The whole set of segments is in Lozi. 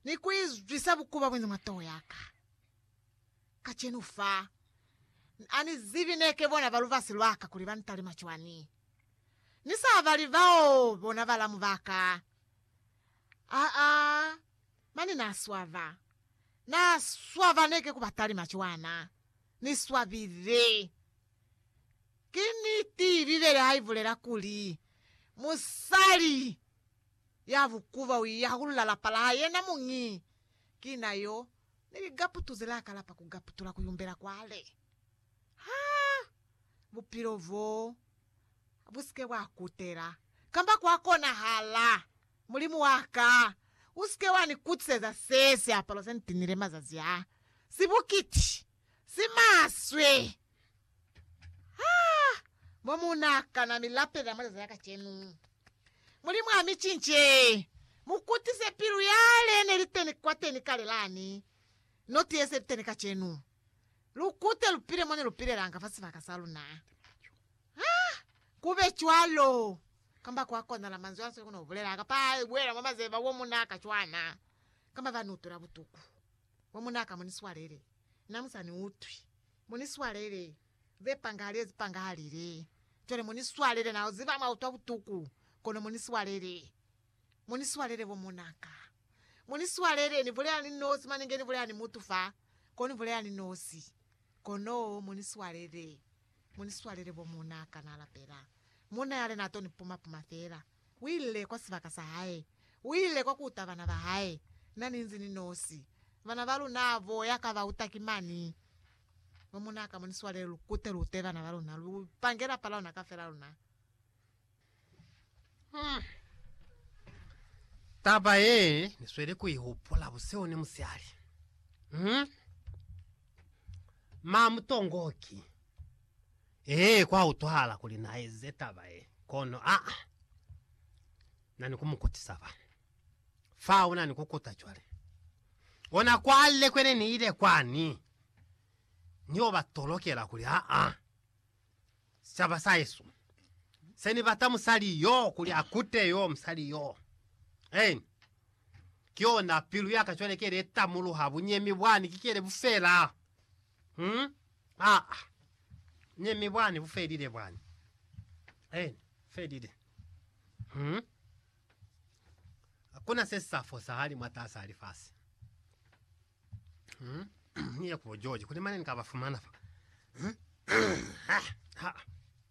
ni ku izwisa bukuba bwani mwa toho ya ka. Kacenu fa, Ni ani zibi ne ke bona ba lubasi lwa ka kuli ba ni talima cwani. Ni sa bali bao bona balamu ba ka. Aa, mane na swaba. Na swaba ne ke ku ba talima cwana. Ni swabile. Ki niti Bibele ha i bulela kuli, Musali. Ya bukuba uiya hakulula lapa laha yena muñi. Kina yo ni ligaputu zelaka lapa kugaputula kuyumbela kwale. Ha bupilo bo busike bwa kutela, kamba kwa konahala, Mulimu waka, usike wa ni kutiseza se siapalo se ni tinile mazazi a, sibukiti, simaswe. Ha mo mu na kana mi lapelela mwa leza ya kacenu. Mulimu a mi cince, mu kutise pilu yale ne li teni kwateni kale lani, no ti yese li teni kacenu. Lu kute lu pile mo ne lu pilelanga fa sibaka sa luna. Ha ku be cwalo, kamba kwa konala manzwi a sili ku no bulela, kapa a buela mwa mazeba wo mu na ka cwana, kamba ba ni utwela butuku, wo mu na ka mo ni swalele, na mu sa ni utwi. Mu ni swalele, ze pangahali ze pangahalile. Cwale mu ni swalele, na ziba mwa utwa butuku, kono mu ni swalele. Mu ni swalele, bo muna ka. Mu ni swalele, ni bulela ni nosi, mane nge ni bulela ni mutu fa, kono ni bulela ni nosi. Kono mu ni swalele. Mu ni swalele, bo muna ka. Na lapela. Munna yale na to ni puma-puma fela. U ile kwa sibaka sa hae. U ile kwa kuta bana ba hae. Na ni nzi ni nosi. Bana ba luna bo ya ka ba uta ki mani. Mwa muna ka mo ni swale lu kute lu ute bana ba luna. Lu pange lapa la luna kafela luna. Hmm. Taba ye ni sweli ku i hupula buseo ni musihali. Hmm. Ma mutongoki. Ee, kwa utwahala kuli na eze taba ye, kono a na ni ku mu kutisa fa. Fa una ni ku kuta cwale. Ona kwale kwene ni ile kwani, ni yo ba tolokela kuli, Aa, sicaba sa hesu, se ni bata musali yo kuli a kute yo, musali yo. Eeni. Ki yona pilu ya ka cwale ke ile tamuluha bunyemi bwani, ki kele bufela. Hmm? Aa. Ne mi bwani bufelile bwani. Eni, felile. Hmm? Hakuna se sa fosahali mwatasa ha lifasi. Hmm? Ni ya kubo George, kuli mane ni ka ba fumana fa. Hmm? Ha, ha.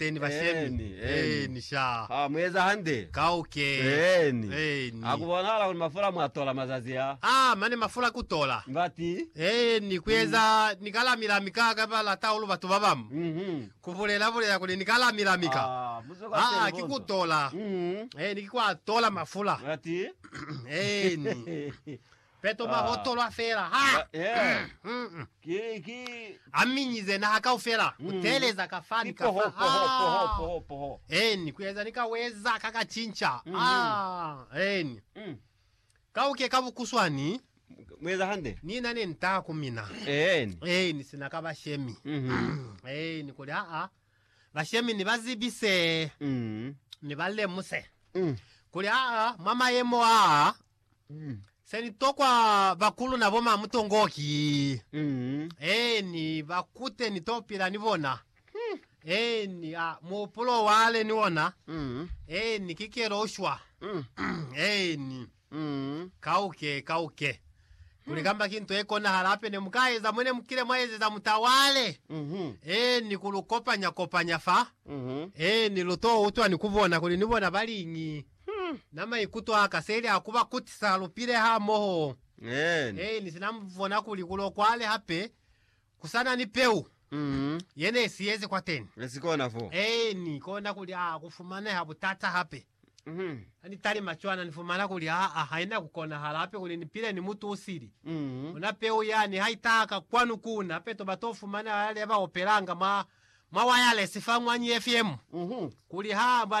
Eeni bashemi. Eeni, eeni. Eeni sha. Ha mu eza hande. Kauke. Eeni. Eeni. Ha ku bonahala kuli mafula mwa tola mazazi a. A mane mafula ku tola. Ngati. Eeni, ku eza ni ka lami-lami ka ka ba lata hahulu batu ba bamu. Mhm. Ku bulela-bulela kuli ni ka lami-lami ka. Aa, muze kwa Aa, teli ki ku bonzwa. tola. Mhm. Eeni, ki kwa tola mafula. Ngati. Eeni. Peto mwa hotolwa fela ha a minyize naha kaufela ku teeleza ka fa ni ka fa, amen, ku eza ni ka weza ka ka cinca, amen, ka uke ka bukuswani Ni na ne ntaa ku mina, amen, sina ka bashemi, amen, kuli aa bashemi ni ba zibi se, ni ba lemuse kuli aa mwa mayemo aa. Mm. Se ni tokwa bakulu na bo ma mutongo ki. Mm. Eni, ba kute ni to pila ni bona. Hmm. Eni, a, muhupulo wa le ni ona. Mm. Eni, ki kelo ushwa. Mm. Eni. Mm. Kauke, kauke. Kuli kamba ki nto e konahala hape ne mu ka eza mo ne mu kile mwa ezeza mutawale. Mhm. Eni, ku lu kopanya kopanya fa. Mhm. Eni, lu to utwa ni ku bona kuli ni bona ba liñi. Na maikuto aka seli a kuba kutisa lupile hamoho. Amen. Ee, ni sina bona kuli kulo kwale hape kusana ni peu yene isiyezi kwateni. Ne si kona fo. Ee, Ni kona kuli a kufumaneha butata hape. Ha ni talima cwana, ni fumana kuli aa, haina kukonahala hape kuli ni pile ni mutu usili. Ona peu yani ha itaha ka kwanu kuuna, hape toba to fumaneha yale ba opelanga mwa, mwa wayalesi fa mwa Ny FM, kuli ha ba